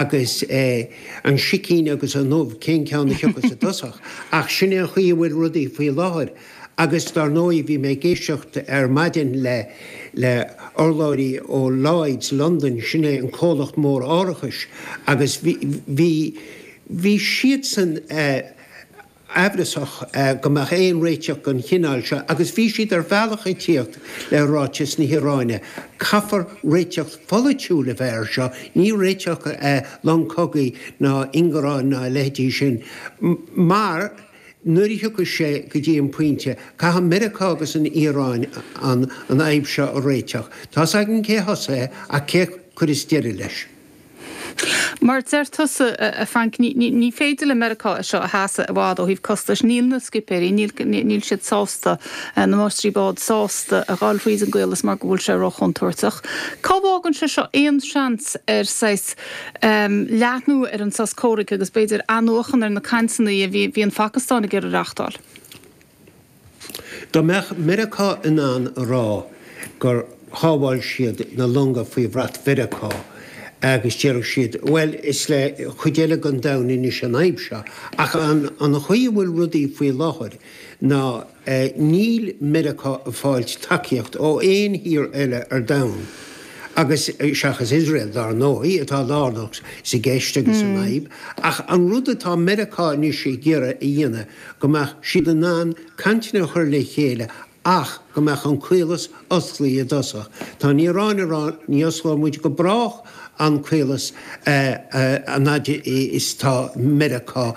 agus an sicín agus an ubh, cén ceann a thiocfas i dtosach? Ach sin é an chaoi a bhfuil rudaí faoi láthair. Agus dár ndóigh, bhí mé ag éisteacht ar maidin le hurlabhraí ó Lloyds Londain, sin é an comhlacht mór árachais, agus bhí, bhí siadsan, amhrasach go mbeadh aon réiteach den chineál seo agus bhí siad ar bhealach ag tíocht le ráiteas na hIaráine, Caithfear réiteach pholaitiúil a bheith air seo, ní réiteach longa cogaidh ná ingearáin ná a leithéidí sin, mar nuair a thiocfas sé go dtí an pointe, caithfidh Meiriceá agus an Iaráin an fhadhb seo a réiteach. Tá's againn cé thosaigh é ach cé chuirfeas deireadh leis. Mar a deir tusa, a Frank, ní féidir le Meiriceá é seo a sheasamh i bhfad ó thaobh costais. Níl na scipéirí, níl siad sásta, na máistrí bád, sásta a ghabháil thríd an gcaolas mar go bhfuil sé róchontúirteach. Cá bhfágann sé seo aon seans ar saghas leathnú ar an sos comhraic agus b'fhéidir athnuachan ar na cainteanna a bhí an Phacastáin ag iarraidh a reáchtáil? Dá mbeadh Meiriceá in ann a rá gur shábháil siad na longa faoi bhrat Mheiriceá agus déarfadh siad, bhuel, is le cuid eile den domhan anois an fhadhb seo. Ach an chaoi a bhfuil rudaí faoi láthair ná níl Meiriceá ag fáilt tacaíocht ó aon thír eile ar domhan, agus, seachas Iosrael, dár ndóigh, atá lárnach sa gceist agus san fhadhb, ach an rud atá Meiriceá anois ag iarraidh a dhéanamh, go mbeadh siad in ann cainteanna a chur le chéile ach go mbeadh an caolas osclaí i dtosach. Tá an Iaráin ag rá, ní osclóidh muid go brách an caolas an fhad is atá Meiriceá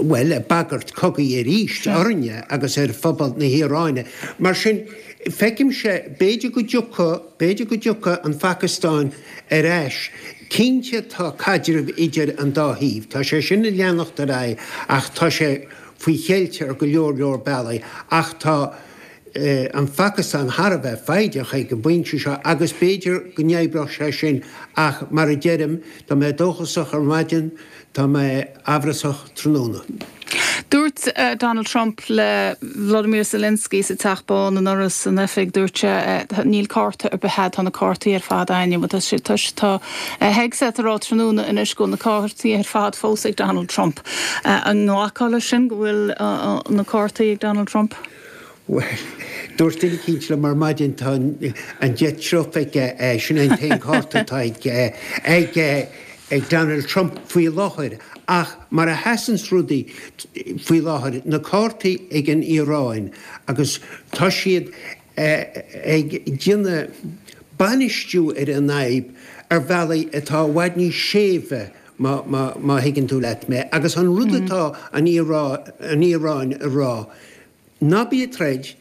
bhuel ag bagairt cogaidh arís orainne agus ar phobal na hIaráine. Mar sin feicimse b'fhéidir go dtiocfaidh, b'fhéidir go dtiocfaidh an Phacastáin ar ais. Cinnte tá caidreamh idir an dá thaobh, tá sé sin ag leanacht ar aghaidh ach tá sé faoi cheilt ar go leor leor bealaigh ach tá an Phacastáin thar a bheith foighdeach ag an bpointe seo agus b'fhéidir go n-oibreodh sé sin ach mar a deirim, má bhí mé dóchasach ar maidin, Tá mé amhrasach tráthnóna. Dúirt Donald Trump le Volodymyr Zelensky sa Teach Bán anuraidh san oifig, dúirt sé, Níl cárta ar bith agat, tá na cártaí ar fad a'm agus tá sé, tá sé, tá Hegseth ag rá tráthnóna inniu go bhfuil na cártaí ar fad fós ag Donald Trump. An nglacfá leis sin go bhfuil na cártaí ag Donald Trump? Bhuel, dúirt duine eicínt liom ar maidin, tá an deich triuf aige, sin é an t-aon chárta atá ag Donald Trump faoi láthair. Ach mar a sheasanns rudaí faoi láthair, na cártaí ag an Iaráin agus tá siad ag déanamh bainistiú ar an fhadhb ar bhealaí atá i bhfad níos séimhe, má thuigeann tú leat mé. Agus an rud atá an Iaráin a rá, Ná bí ag troid,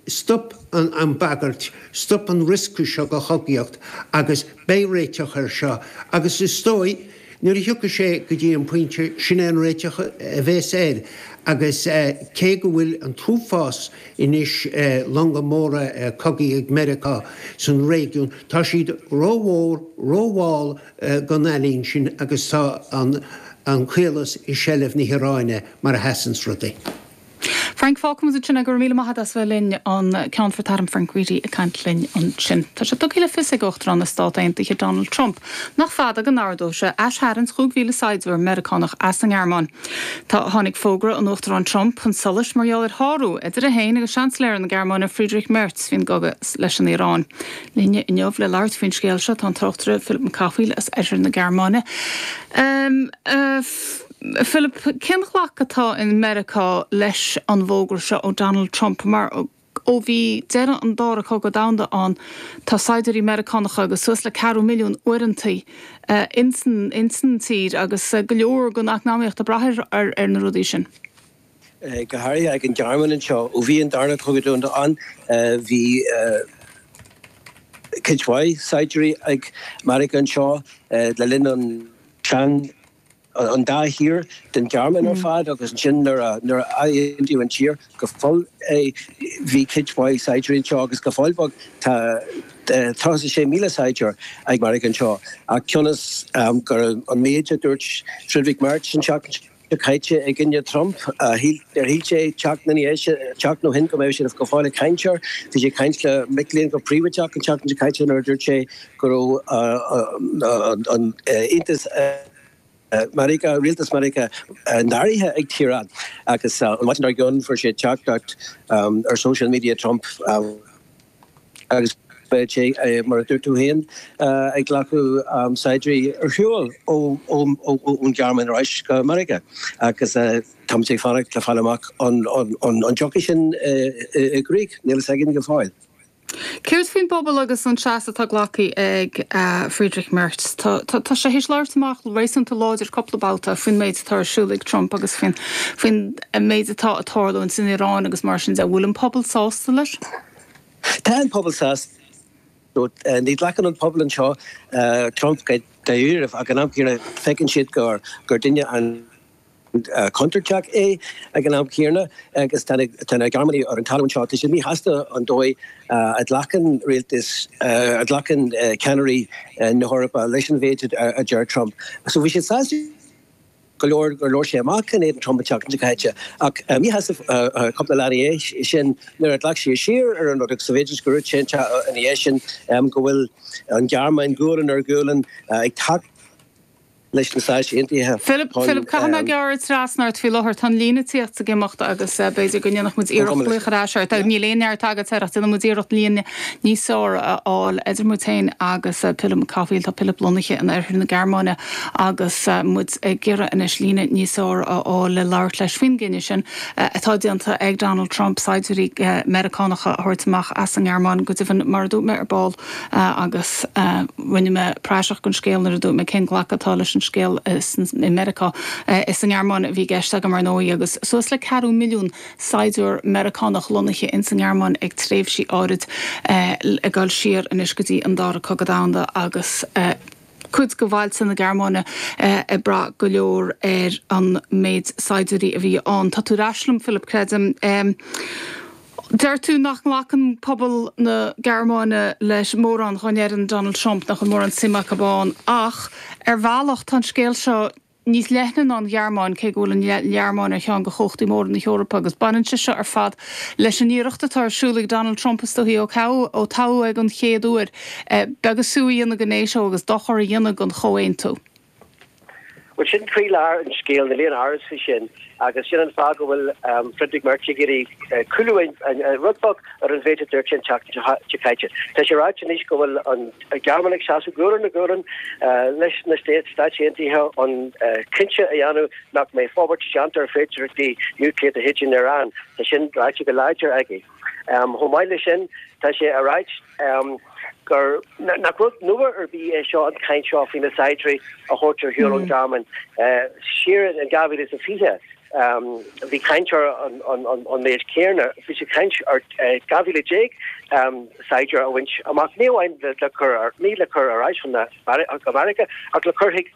stop an bhagairt, stop an riosca seo de chogaíocht agus beidh réiteach air seo agus is dóigh nuair a thiocfaidh sé go dtí an pointe sin é an réiteach a bhéas air agus cé go bhfuil an t-uafás anois longa móra cogaidh ag Meiriceá san réigiún tá siad ró-mhór, ró-mhall don ealaín sin agus tá an caolas i seilbh na hIaráine mar a sheasanns rudaí. Frank fágfaidh muid ansin é. Go raibh míle maith agat as a bheith linn an Ceannfort Airm Frank Reidy ag caint linn ansin. Tá sé tugtha le fios ag Uachtarán na Stát Aontaithe Donald Trump nach fada go n-ordóidh sé aistarraingt 5,000 saighdiúir Meiriceánach as an nGearmáin. Tá tháinig fógra an Uachtaráin Trump chun solais mar gheall ar shárú idir é féin agus Seansailéir na Gearmáine Friedrich Merz faoin gcogadh leis an Iaráin. Linne inniu le labhairt faoin scéal seo tá an tráchtaire Philip Mac Cathmhaoil as oirthear na Gearmáine. Philip, cén glacadh atá i Meiriceá leis an bhfógra seo ó Donald Trump? Mar ó bhí deireadh an Dara Cogadh Domhanda ann tá saighdiúirí Meiriceánacha agus suas le ceathrú milliún uaireantaí ins an tír agus go leor den eacnamaíocht ag brath ar na rudaí sin. go háirithe ag an Ghearmáin anseo. Ó bhí an Darna Cogadh Domhanda ann bhí cuid mhaith saighdiúirí ag Meiriceá anseo le linn an an dá thír den Ghearmáin ar fad agus ansin nuair a nuair a aontaíodh an tír go fóill bhí cuid mhaith saighdiúirí anseo agus go fóill beag tá eh, 36,000 saighdiúir ag Meiriceá anseo ach cionn is um, gur an méid a dúirt Friedrich Merz an tseachtain seo caite i gcoinne Trump a shíl ar shíl sé seachtain ina dhiaidh sin- seachtain ó shin go mbeadh siad go fóill ag caint air bhí sé ag caint le mic léinn go príobháideach an tseachtain seo caite nuair a dúirt sé go raibh an aontas Mheiriceá, rialtas Mheiriceá, náirithe ag Tehran agus an mhaidin dár gcionn fuair sé teachtaireacht ar social media Trump agus beidh sé, mar a dúirt tú féin, ag glacadh saighdiúirí ar shiúl ón Ghearmáin ar ais go Meiriceá agus táimid ag fanacht le fáil amach an dtiocfaidh sin i gcrích, níl a fhios againn go fóill. Céard faoin bpobal agus an seasamh atá glactha ag Friedrich Merz? Tá sé th'éis labhairt amach réasúnta láidir cupla babhta faoin méid atá ar siúl ag Trump agus faoin méid atá ag tarlú ins an Iaráin agus mar sin de. An bhfuil an pobal sásta leis? Tá an pobal sásta. Ní ghlacann an pobal anseo Trump go dáiríribh ach ag an am céanna feiceann siad gur duine an. contúirteach é ag an am céanna agus tá na Gearmánaigh ar an talamh anseo. Tá siad míshásta an dóigh a ghlacann rialtas, a ghlacann ceannairí na hEorpa leis an mhéid a deir Trump. So bhí siad sásta go leor gur labhair sé amach in éadan Trump an tseachtain seo caite ach míshásta cúpla lá ina dhiaidh sin nuair a ghlac sé siar ar an rud agus bhféidir go raibh sé an tráth ina dhiaidh sin go bhfuil an Ghearmáin gualainn ar ghualainn ag leis na Stáit Aontaithe chun. Philip, caithfidh mé gearradh trasna ort faoi láthair. Tá an líne ag tíocht is ag imeacht agus b'fhéidir go ndéanfadh muid iarracht glaoch ar ais ort. Níl aon neart agat air ach déanfaidh muid iarracht líne níos fearr a fháil idir muid féin agus Pilib Mac Cathmhaoil. Tá Pilib lonnaithe in oirthear na Gearmáine agus muid ag iarraidh anois líne níos fearr a fháil le labhairt leis faoin gcinneadh sin atá déanta ag Donald Trump saighdiúirí Meiriceánacha a thabhairt amach as an nGearmáin. Go deimhin, mar a dúirt mé ar ball, agus rinne mé praiseach den scéal nuair a dúirt mé cén glacadh atá leis an scéal i Meiriceá. Is sa nGearmáin a bhí i gceist agam, ar ndóigh, agus suas le ceathrú milliún saighdiúir Meiriceánach lonnaithe ins an nGearmáin ag tréimhsí áirid, ag dul siar anois go dtí an Dara Cogadh Domhanda, agus cuid de bhailte na Gearmáine ag brath go leor ar an méid saighdiúirí a bhí ann. Tá tú ar ais liom, Philip, creidim. Deir tú nach nglacann pobal na Gearmáine le mórán dá ndeireann Donald Trump, nach bhfuil mórán suime acu ann, ach ar bhealach tá an scéal seo níos leithne ná an Ghearmáin, cé go bhfuil an Ghearmáin ar cheann de chumhachtaí móra na hEorpa agus baineann sé seo ar fad leis an iarracht atá ar siúl ag Donald Trump is dóigh ó toghadh é den chéad uair, beag is fiú a dhéanamh de Nato agus dochar a dhéanamh don chomhaontú. Bhuel, sin croílár an scéil, níl aon amhras faoi sin, agus sin an fáth go bhfuil Friedrich Merz ag iarraidh cúlú rud beag ar an mhéid a dúirt sé an tseachtain seo caite. Tá sé ráite anois go bhfuil an Ghearmáin ag seasamh gualainn ar ghualainn leis na Stáit Aontaithe chun cinnte a dhéanamh nach mbeidh forbairt déanta ar fhéidearthachtaí núicléacha de chuid na hIaráine. Tá sin ráite go láidir aige. Chomh maith leis sin, tá sé á ráit gur nach rud nua ar bith é seo, an chaint seo faoi na saighdiúirí a thabhairt ar shiúl ón Ghearmáin. Siar in 2020, bhí caint ar an méid céanna, bhí sé caint ar 12,000 saighdiúir a bhaint amach, ní amháin le cur ar ais chun Mheiriceá ach le cur chuig